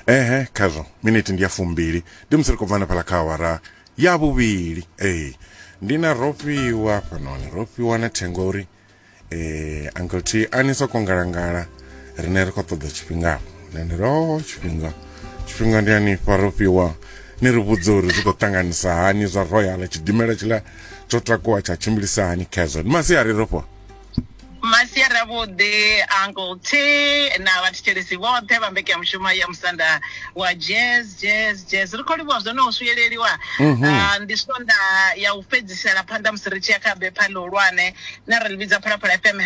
ehe khazwo miniti ndi ya fumbili ndi musi ri khou bvana phala kha awara ya vhuvhili ee ndi na rofhiwa hafhanoni rofhiwa na thengo ya uri eh uncle t a ni soko ngalangala rine ri khou ṱoḓa tshifhingafho nani ro tshifhinga tshifhinga ndi anifha rofhiwa ni ri vhudze uri zwi khou ṱanganisa hani zwa royal tshidimela tshiḽa tsho takuwa tsha tshimbilisa hani khezwo ndi masiari rofhiwa masiari avhuḓi uncle t na vhathetshelesi vhoṱhe vha mbeke ya mushumo ya musanda wa jazz jazz jazz ri khou livhuwa zwo no swiyeleliwa mhm. ah, ndi sonda ya u fhedzisela phanḓa musi ri tshi ya kha bepha ḽihulwane na ri livhidza phalaphala fm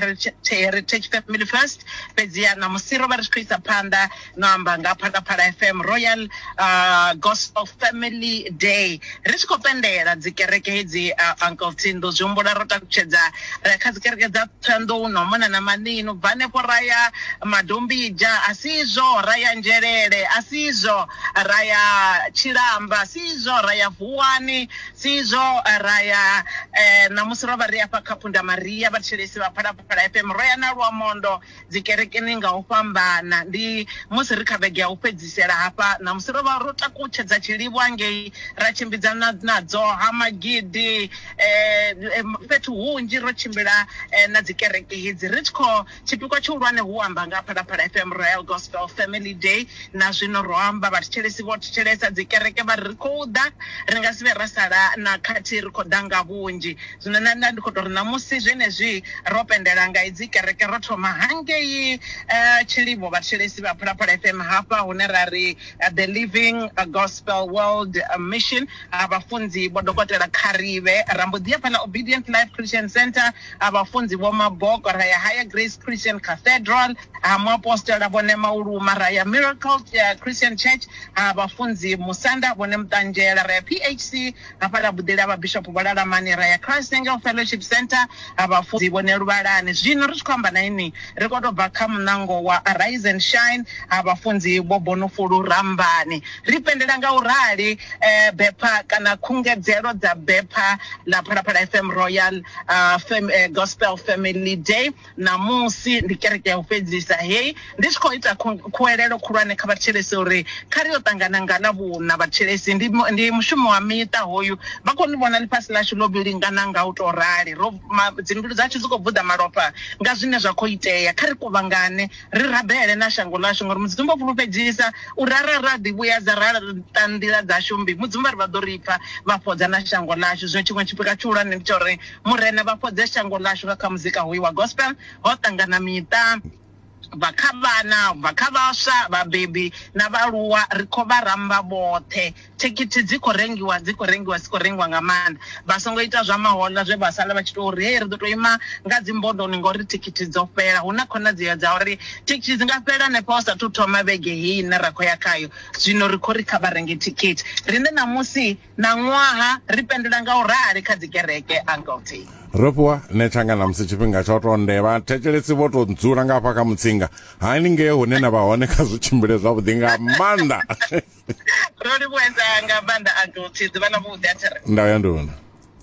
heritage family first fhedzi ya ṋamusi ro vha ri tshi khou isa phanḓa no amba nga phalaphala fm royal uh, gospel family day ri tshi khou pendela dzikereke hedzi uh, uncle tindo zwi humbula ro takutshedza ra ya kha dzikereke dza thanḓou no mona na manino bva hanefho ra ya madombija a si izwo ra ya nzhelele a si izwo ra ya tshilamba si izwo ra ya vuwani si izwo ra ya eh, ṋamusi ro vha ri afha kha phunda maria vhathetshelesi vha phalaphala fm ro ya na luamondo dzi kerekeni nga u fhambana. Ndi musi ri kha vhege ya u fhedzisela hafha ṋamusi, ro vha ro takutshedza tshilivhwa ngei, ra tshimbidza na na dzo ha magidi fhethu hunzhi, ro tshimbila na dzi kereke hedzi ri tshi kho tshipikwa tshihulwane hu amba nga ha Phalaphala FM Royal Gospel Family Day. Na zwino ro amba vhathetshelesi vho thetshelesa dzi kereke vha ri ri khou ḓa, ri nga si vhe ra sala na khathihi ri khou ḓa nga vhunzhi. Zwino nṋe nda ndi khou tou ri ṋamusi zwenezwi ro pendela nga idzi kereke ro thoma hangei Tshilivho vhathetshelesi vha Phalaphala FM hafha hune ra ri The Living Gospel World Mission ha vhafunzi Vho Dokotela Kgarivhe ra mbo ḓi ya fhaḽa Obedient Life Christian Centre ha vhafunzi Vho Maboko ra ya Higher Grace Christian Cathedral ha muapostola Vho Nemauluma ra ya Miracle Christian Church ha vhafunzi Musanda Vho Nemuṱanzhela ra ya PHC Hafha ra buḓela Vhabishopo Vho Lalamani ra ya Christ Angel Fellowship Centre ha Vhafunzi Vhone Luvhalani. Zwino ri tshi khou amba na inwi, ri khou tou bva kha muṋango wa Arise and Shine ha Vhafunzi Vho Bonofulu Rambani. Ri pendela nga u rali bepha kana khungedzelo dza bepha ḽa Phalaphala FM Royal Gospel Family Day. Ṋamusi ndi kereke ya u fhedzisa hei ndi tshi khou ita khuwelelo khulwane kha vhathetshelesi uri kha ri yo ṱangana nga Ḽavhuṋa. Vhathetshelesi ndi, ndi mushumo wa miṱa hoyu. Vha khou ni vhona ḽifhasi ḽashu ḽo vhilingana nga u tou rali. Ro, ma, dzimbilu dzashu dzi khou buḓa malofha nga zwine zwa khou itea. Kha ri kuvhangane ri rabele na shango ḽashu, ngauri Mudzimu o fhulufhedzisa uri arali ra ḓivhuyedza ra laṱa nḓila dzashu mmbi, Mudzimu vha ri vha ḓo ri pfa vha fhodza na shango ḽashu. Zwino tshiṅwe tshipikwa tshihulwane ndi tsha uri Murena vha fhodze shango ḽashu nga kha muzika hoyu wa gospel, ho ṱangana miṱa, bva kha vhana, bva kha vhaswa, vhabebi na vhaaluwa ri kho vha ramba vhoṱhe. Thikhithi dzi kho rengiwa dzi kho rengiwa dzi kho rengiwa nga maanḓa. Vha songo ita zwa mahoḽa zwe vha sala vha tshi tou ri hei ri ḓo tou ima nga dzi mbondoni ngori thikhithi dzo fhela, hu na khonadzeo dza uri thikhithi dzi nga fhela hanefha hu sathu thoma vhege heyi ine ra kho ya khayo, zwino ri kho ri kha vha renge thikhithi riṋe ṋamusi. Ṋaṅwaha ri pendulela nga u rali kha dzikereke, Uncle T. Ro fhiwa nethanga na musi tshifhinga tsha u tou nde vha thetshelesi vho tou dzula nga hafha kha mutsinga hani ngei hune na vha hone kha zwi tshimbile zwavhuḓi nga maanḓa ro livhuedza nga maanḓa uncle t ḓuvha na vhuḓi a thiri ndau ya nduna